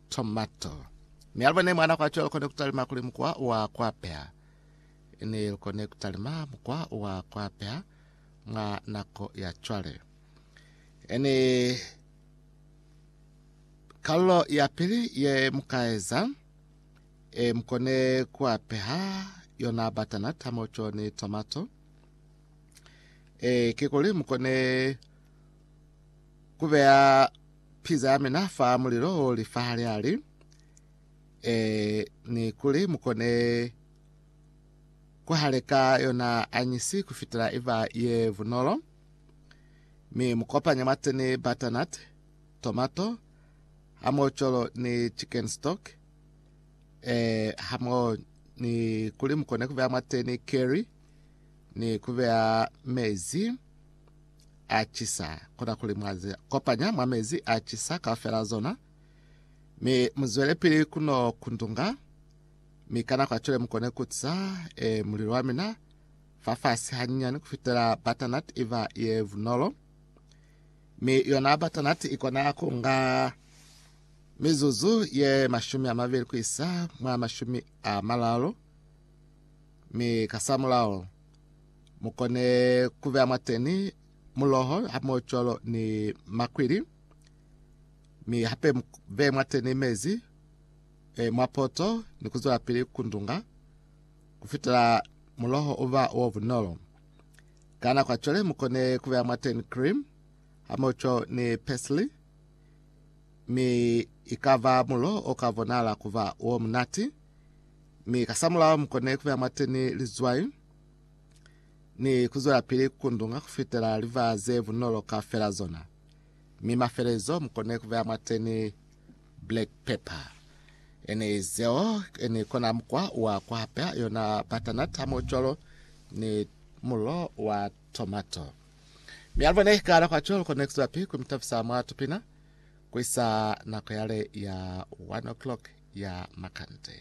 tomato. Mi alubo ne mwana kwa cholo kone kutalima kuli mukwa wa kwapea. Ne kone kutalima mukwa wa kwapea mwa nako ya chwale. Ene kalulo ya pili ye mukaeza e mkone kuapeha yona batana tamocho ni tomato e kikuli mkone kubeya Piza ya mina fa mulilo o li fa hali hali, ee, ni kuli mu kone ku haleka yona anyisi ku fitela i ba ye bunolo. Mi mu kopanye mwateni butternut, tomato, hamoho cwalo ni chicken stock, ee, hamoho ni kuli mu kone ku beya mwateni curry ni ku beya mezi. a cisa, kona kuli mwa zi kopanya mwa mezi a cisa kaufela zona, mi muzwelepili kuno kundunga, mi kana kwa cwale mukone kutisa e, mulilo wa mina fafasi hanyinyani kufitela batanat iva ye vunolo, mi yona batanat ikona kunga mizuzu ye mashumi a mabili kuisa mwa mashumi a malalo, mi kasamulao mukone kubeya mwateni muloho hamocolo ni makwili mi hape beye mwateni mezi e, mwapoto ni kuzwela pili kundunga kufitela muloho uba wo bunolo kana kwacole mukone kubeya mwateni cream hamoco ni pesli mi ikava mulo okavonala kuva wo munati Mi kasamulaho mukone kubeya mwateni lizwai ni kuzwelapili kundunga kufitela liba ze bunolo kaufela zona. Mi mafelezo mukone kubeya mwateni black pepper. Ene zeo ene kona mukwa wa kuhapea yona butternut hamo cwalo ni mulo wa tomato. Mi alibone kana kwa cwalo kone kuzwelapi kumitafisa mwa tupina Ku isa nako yale ya one o'clock ya makande.